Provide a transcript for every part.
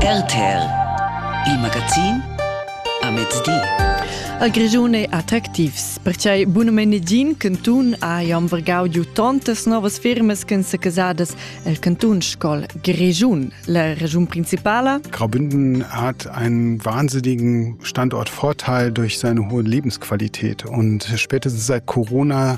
RTL Il magazin a mezdi. A Grischun è attractivs. Perquai bunumennegin cantun ha jam vergau giu tontas novas firmas ch'en sa casadas el cantun Scol Grischun. La regiun principala? Graubünden hat einen wahnsinnigen Standortvorteil durch seine hohe Lebensqualität. Und spätestens seit Corona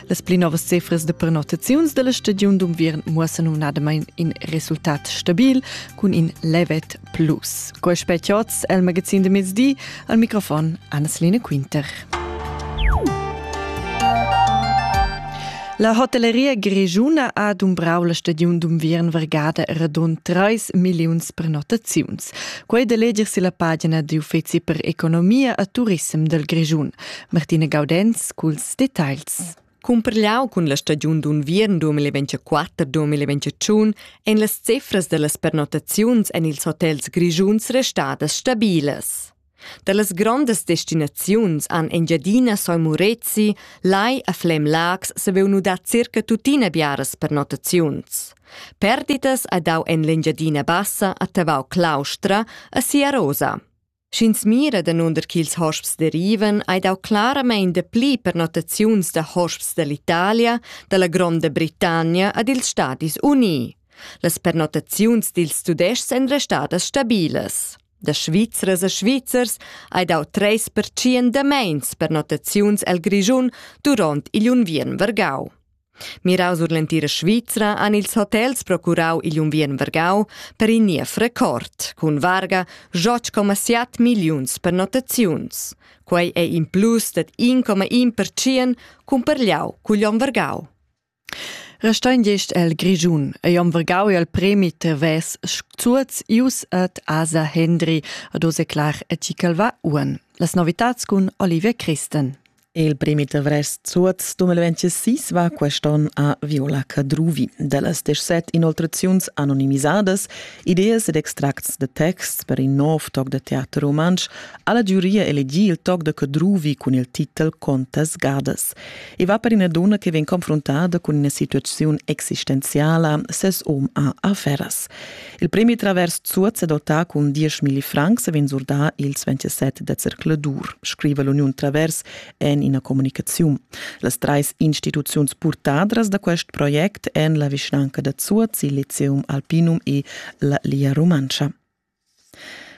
Las pli novas cifras de prenotaziuns della stagiun d'unviern muossen numnadamain in resultat stabil cun in levet plus. Quei spet oz el magazin de mezdi al microfon Anneslene Quinter. La hotelleria grigiuna ha dumbrau la stagiun d'unviern vargada radund 3 milliuns prenotaziuns. Quei de leger si la pagina d'uffeci per economia a turissem del Grigiun. Martina Gaudenz culs Details. Cumpreliau cun la stagiun d'unviern 2024-2021 ein las cifras dallas pernottaziuns en ils hotels grischuns restadas stabilas. Dallas grondas destinaziuns han Engiadina Soi Murezi, Lai a Flem Lags saveu nudar circa tuttina biaras pernottaziuns. Perditas ha dau en l'Engiadina Bassa a Tavau Claustra a Siarosa. Sch'ins mira danunder ch'ils hosps derivan, hai dau claramain dapli pernottaziuns da hosps dall'Italia, dalla Gronda Britannia ad ils Stadis Unii. Las pernottaziuns dils Tudestgs èn restadas stabilas. Da Svizras a Svizzers hai dau treis pertschien da meins pernottaziuns el Grischun duront igl unviern vargau. Mirau sur l'entira Svizra han ils hotels procurau igl unviern vargau per in niev record, cun varga 7,7 milliuns pernottaziuns. Quei ei in plus dad 1,1% cumparliau cugl onn vargau. Restein gest el Grischun ei om vergau el premi Tevez Sturz Ius et Asa Hendri ad Ose Clar et Tichelva Uhren. Las novitats cun Olivia Christen. Il primi avrest suots 2026 va quest'on a Viola Cadruvi. Dellas 17 inoltraziuns anonimisadas, ideas ed extracts de texts per in nov toc de teater rumantsch ha la giuria elegì il toc de Cadruvi cun il titel Contas gadas. E va per ina donna che vegn confrontada cun ina situaziun existenziala, ses um ha afferas. Il premi travers Zuoz è dotà cun 10.000 francs e vegn surdà ils 27 da zercladur, scriva l'Uniun Travers en ina communicaziun. Las trais instituziuns purtadras da quest project èn la vischnanca da Zuoz, il Lyceum Alpinum e la Lia Rumantscha.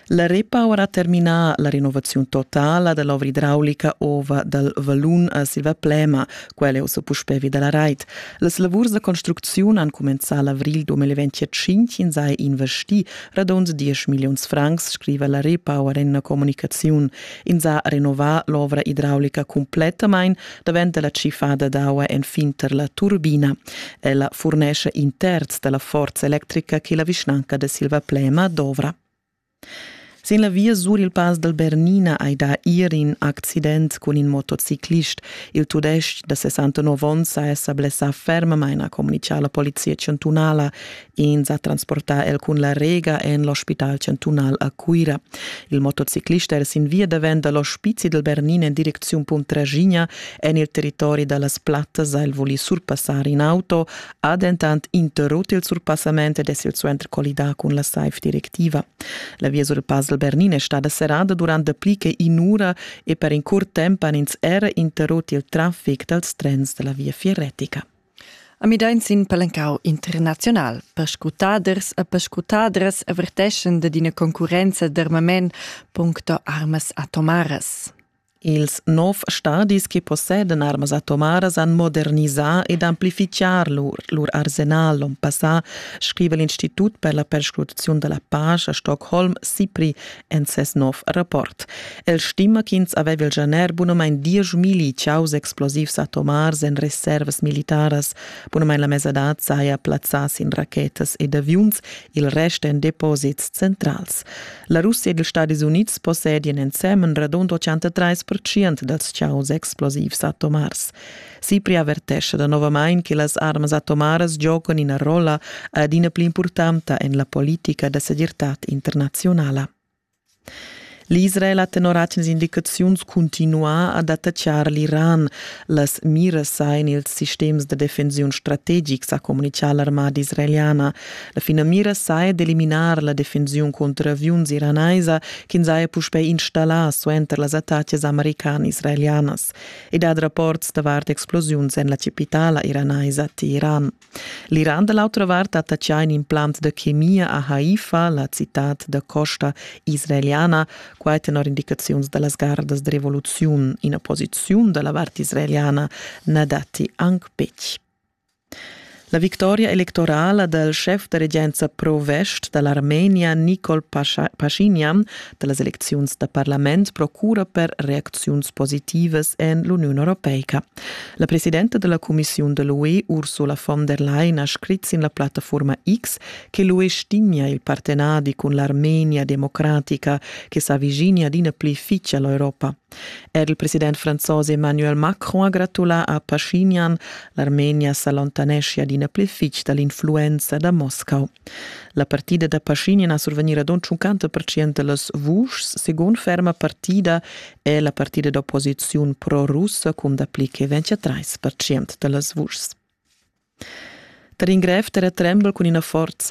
La Repower ha terminà la renovaziun totala dell'ovra idraulica ova dal valun a Silva Plema, quella è ussa puspè vi dalla rait. Las lavurs da construcziun han cumenzà l'avril 2025 in sai investì radund 10 milliuns francs, scriva la Repower en una comunicaziun. In sa renovar l'ovra idraulica complettamain daventa la cifada d'aua enfin tar la turbina. Ella furnesce in terz dalla forza electrica che la vischnanca de Silva Plema dovra. Sin la via sur il Pass dal Bernina hai dà ir in accident cun in motociclist. Il tudestg da 69 onns ha sa blessà fermamain, ha communitgà la polizia chantunala. Ins ha transportà el cun la rega en l'ospital chantunal a Cuira. Il motociclist era sin via davent da l'ospizi dal Bernina en direcziun Puntraschigna en il territori da las Plattas. El voli surpassar in auto, ha dentant interrut il surpassament ed es il suenter collidà cun la SAIF directiva. La via sul Pass del Bernin è stada serrada durant dapli che in'ura e per in curt temp han ins era interrut il traffic dals trens da la viafier retica. A Midain sin palencau internazional. Perscutaders e perscutadras averteschan dad ina concurrenza d'armament puncto armas atomaras. Ils nov stadis che possedan armas atomaras han modernisà ed amplifichar lur, lur arsenal l'on passà, scriva l'Institut per la perscrutaziun da la pace a Stockholm SIPRI en ses nov rapport. El stima ch'ins aveva il gener bunamain dieschmilli chaus explosivs atomars en reservas militaras. Bunamain la mesadad saja plazzà sin rachetas ed aviuns, il rest en deposits centrals. La Russia ed ils Stadis Unids possedian ensemen radund 83% dals chaus explosivs atomars. Cipri avertescha danovamain che las armas atomaras giocan ina rolla adina pli impurtanta en la politica da segirtad internaziunala. L'Israel ha tenor atgnas indicaziuns cuntinuà ad attaccar l'Iran. Las miras ein ils sistems da defensiun strategics, ha communità l'armada israeliana. La finamira saja d'eliminar la defensiun contro aviuns iranaisa ch'ins haja puspè installà suenter las attacas american-israelianas e dat rapports davart explosiuns en la capitala iranaisa Teheran. L'Iran da l'autra vart attacchà in implant da chemia a Haifa, la citad da costa israeliana, quai tenor indicaziuns da las gardas da rivoluziun. Ina posiziun da la vart israeliana na datti anc betg. La victoria electorala dal schef da regenza pro-vest da l'Armenia Nicol Pashinyan da las elecziuns da parlament procura per reacziuns positivas en l'Uniun europeica. La presidenta da la cumissiun da l'UE Ursula von der Leyen ha scrit sin la plattaforma X che l'UE stimia il partenadi cun l'Armenia democratica che s'aviginia adina pli fitg a l'Europa. Er il president franzos Emmanuel Macron ha gratulà a Paschinyan. L'Armenia s'allontaneschia adina pli fitg da l'influenza da Moscau. La partida da Paschinyan a survegnir ad onn 50% da las vuschs, segun ferma partida, è la partida d'opposiziun pro-russa cun dapli che 23% da las vuschs. Tar in grev terratrembel cun ina forza